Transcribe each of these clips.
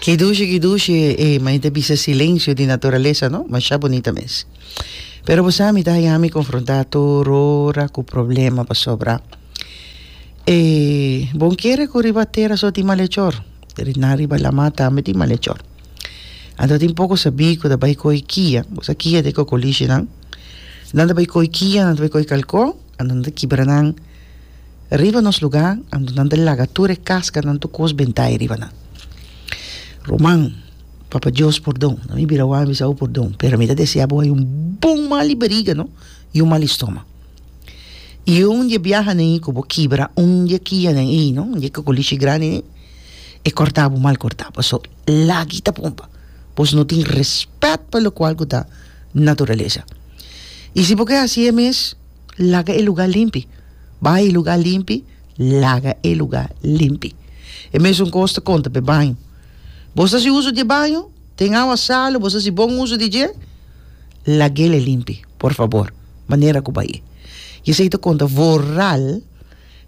Ki dushi, ki dushi e manita bisa silencio di naturaleza, no? Masha bonita mes. Pero bo sa, mi ta haya mi confronta torora cu problema pasobra e bon kere cu riba tera so tin malhechor. Ri nan riba lama tambe tin malhechor. Anto tin poco sabi cu ta bay coy kia. Bo sa kia te cocolishi nan. Nan ta bay coy kia, nan ta bay coy calco, anto nan ta kibra nan. Riba nos lugá anto nan ta laga tur e kaska nan tur kos benta'i riba nan. Roman, Papa Dios pordon, na mi bira wou a bisa bo pordon, pero mi ta desea bo hai un bon mal di beriga no i un mal di stoma. I un di e biaha nei ku bo kibra un di e kianan ei no, un di e kokolishi grandi nei, e kortá bo mal kortá. Paso lagi ta pompa. Boso no tin rèspèt pa lokual ku ta naturalesa. I si bo ke hasié mes. laga e lugá limpi. Bai e lugá limpi, laga e lugá limpi. E mesun kos ta konta pa e baño. Bos ta hasi uso di e baño, ten awa salo, bos ta hasi bon uso di dje, lag'el e limpi, por fabor, manera ku bai. I esei ta konta vorral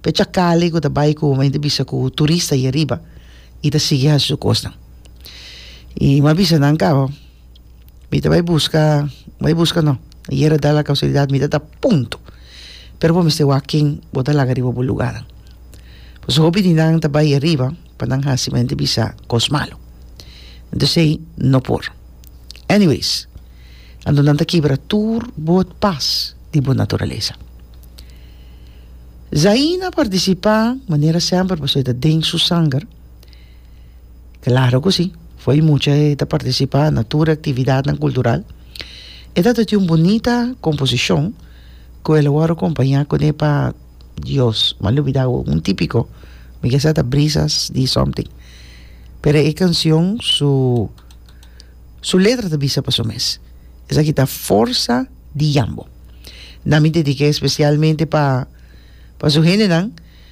pa e chakali ku ta bai ku mi ta bisa ku turista ahi ariba i ta sigui hasi su kosnan. I mi a bisa nan kaba. Mi ta bai buska, bai buska no, yera da la kausalidad mi ta ta punto, pero bo mester wak ken bo ta laga riba bo luganan. Pasobra hopi di nan ta bai ariba pa nan hasi mente bisa kos malu. Entonces ei no por. Anyways, anto nan ta kibra tur bo pas di bo naturalesa. Zaina a participá, manera semper, pasobra e ta den su sanger. Claro cu si. Fo'i mucha e ta participa na tur e actividadnan cultural. E ta ta tin un bunita composicion cu e lo wor acompaña cu nepa Dios. Bo a lubida cu un tipico mi ke sa ta Brisas di something. Pero e cancion su su letra ta bisa pa su mes. Esaki ta Forsa di Yambo. Na mi dedica especialmente pa su hendenan